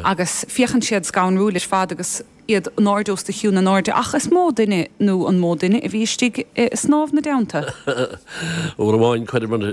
agus féachann siad scanrúil ar fad agus iad in airde os do chionn in airde, ach is mó duine nó an mó duine a bhí istigh ag snámh ina dteannta. Uair amháin chuireamar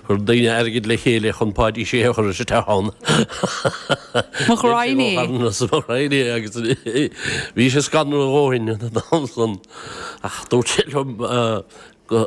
chuir daoine airgid le chéile chun Páidí Sé a chur isteach ann. Mo ghraidhin é. Mo ghraidhin é agus bhí sé scanrúil a dhóthain an t-am san ach dúirt sé liom go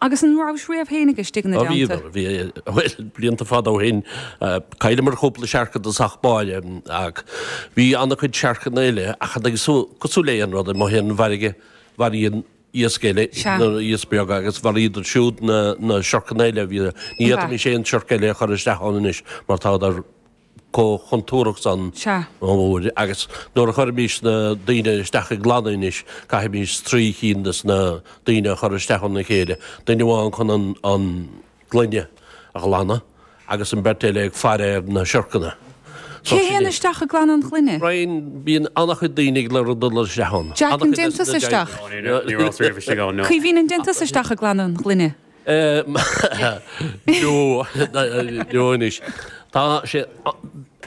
Agus an rabhais riamh féinig istigh ina dteannta? Bhí, bhuel, blianta fada ó shin, chailleamar cúpla siorc i dtosach báire ach bhí ana-chuid siorcanna eile ach cosúil le aon rud amuigh ar an bhfarraige, maraíonn iasc eile na hiasc beaga agus mharaíodar siúd na siorcanna eile a bhí, ní fhéadfaimis aon siorc eile a chur isteach ann anois mar táadar. chomh contúrthach san Sea. uair, agus nuair a chuirimís na daoine isteach ag glanadh anois, caithfimís trí chinn de sna daoine a chur isteach i dteannta a chéile, duine amháin chun an an gloine a ghlanadh agus an beirt eile ag faire ar na siorcanna. So Cé sin théann é. isteach ag glanadh an ghloine? Brian, Bíonn an-chuid daoine ag lorg dul isteach ann. Jack an An-chuid de dtéann tusa isteach? Ní raibh, ní rabhas riamh istigh ann, no. Caoimhín an dtéann tusa isteach ag glanadh an ghloine? Nó anois, tá sé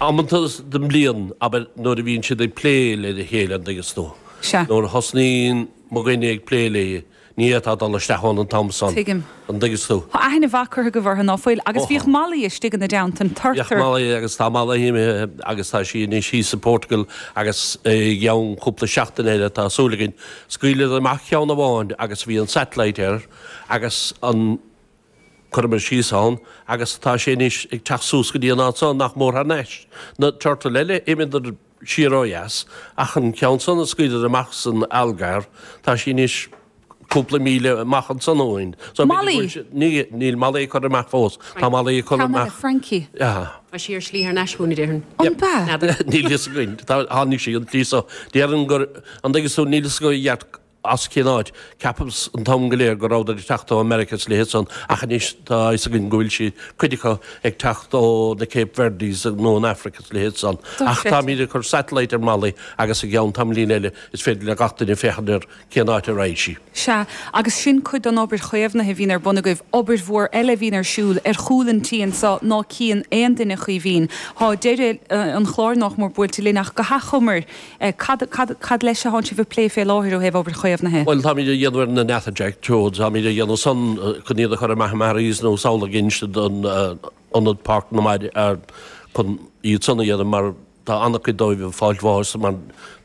amanta den mbliain, abair, nuair a bhíonn siad ag plé le chéile, an dtuigeanns tú. Sea. Nuair a thosnaíonn mo dhuine ag plé léi, ní fhéadfá dul isteach ann an t-am san. Tuigim. An dtuigeas tú? Thá aithne mhaith curtha acu orthu, ná fuil? Agus bhíodh Molly istigh ina dteannta, an turtar. Bhíodh Molly, agus tá Molly imithe, agus tá sí anois thíos i bPortugal, agus i gceann cúpla seachtain eile, tá súil againn, scaoilfidh siad amach ceann amháin agus bhí an satellite air. agus an cuireamar síos ann agus tá sé anois ag teacht suas go dtí an áit so, nach mór thar n-ais. Na turtail eile, d'imíodar siar ó dheas, ach an ceann san a scaoileadar amach san Algarve, tá sí anois cúpla míle amach ansan ó shin. So, b'fhéidir go Molly! bhfuil sé, ní, níl Molly curtha amach fós. Tá Right. Molly curtha Ceann eile amach. Francie. Aha. Tá sí ar slí thar n-ais chugainn, a déarfainn. An Yep. b'ea? N'fheadar. Níl fhios againn. Tá, tháinig sí an tslí so. Déarfainn gur, an dtuigeas tú, níl fhios agam i gceart as cén áit. Cheapas an t-am go léir go rabhadar ag teacht ó Mheirice is leithéid san ach anois tá a fhios againn go bhfuil siad, cuid acu, ag teacht ó na Cape Verdes nó an Aifric is leithéid san. Ach táimíd ag cur satellite ar Molly agus i gceann tamaillín eile is féidir le gach duine féachaint ar cén áit a raghaidh sí. Sea, agus sin cuid den obair chaomhnaithe a bhíonn ar bun agaibh, obair mhór eile a bhíonn ar siúl ar chúl an tí anseo ná cíonn aon duine, a Chaoimhín. Tá deireadh an chláir nách mór buailte linn ach go hathchomair, Cad, cad, cad, cad leis atánn sibh ag plé fé láthair ó thaobh obair chaomhnaithe? Bhuel, táimid á dhéanamh ar na Natterjack Toads, táimid á dhéanamh san chun iad a chur amach i Maharees nó samhlaigh instead an Ionad Páirc na Mara chun iad san a dhéanamh mar tá an-chuid dóibh ag fáilt bháis mar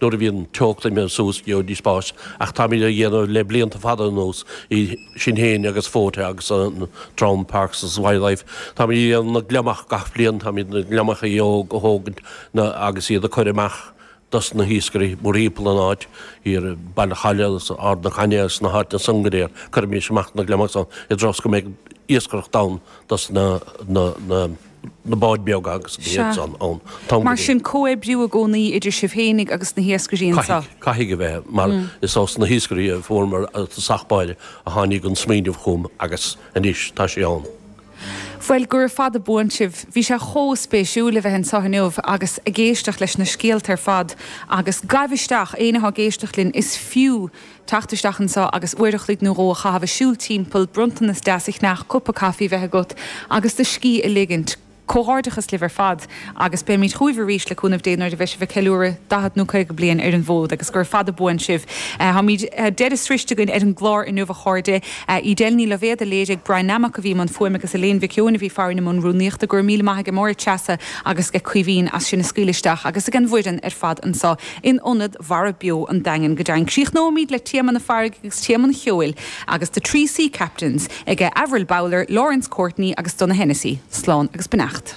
nuair a bhíonn an teocht imithe suas gheobhaidís bás ach táimid á dhéanamh le blianta fada anuas i sinn féin agus Fóta agus an dream Parks is Wildlife. Táimid na gliomaigh gach bliain, táimid na gliomaigh a thógaint agus iad a chur amach dos na hiascairí mórthimpeall an áit thiar i Baile Chaille is i Ard na Cainne is sna háiteanna san go léir. Cuirimis amach na gliomaigh san i dtreo is go mbeidh iascaireacht ann dos na na báid beaga agus na hiad san ann. Mar sin, comhoibriú i gcónaí idir sibh féinig agus na hiascairí anseo? Caithfidh, caithfidh a bheith, mar is ó sna hiascairí a fuaireamar sa chéad áit a tháinig an smaoineamh chugam agus anois tá sé ann. Bhuel, gura fada buan sibh. Bhí sé chomh spéisiúil a bheith anseo inniu agus ag éisteacht leis na scéalta ar fad agus gabh isteach, éinne atá ag éisteacht linn, is fiú, teacht isteach anseo agus uair a chloig nó dhó a chaitheamh ag siúl timpeall, bronntanas deas a cheannach, cupa caife a bheith agat agus do scíth a ligint. Comhghairdeachas libh ar fad agus beimid chugaibh arís, le cúnamh Dé, nuair a bheidh sibh ag ceiliúradh daichead nó caoga bliain ar an bhfód agus gura fada buan sibh. Tá an deireadh sroichte againn ar an gclár inniu, a chairde. Edel Ní Loibhéad a léirigh, Brian Nammock a bhí i mbun fuaime agus Elaine Mhic Eoin a bhí farainn i mbun rúnaíochta. Gura míle maith ag Máire Treasa agus ag Caoimhín as sinn a scaoileadh isteach agus ag an bhfoireann ar fad anseo in Ionad Mara Beo an Daingin go deimhin. Críochnóimid le Téama na Farraige agus Téama an Cheoil agus The Three Sea Captains, ag Avril Bowler, Laurence Courtney agus Donogh Hennessy. Slán agus beannacht.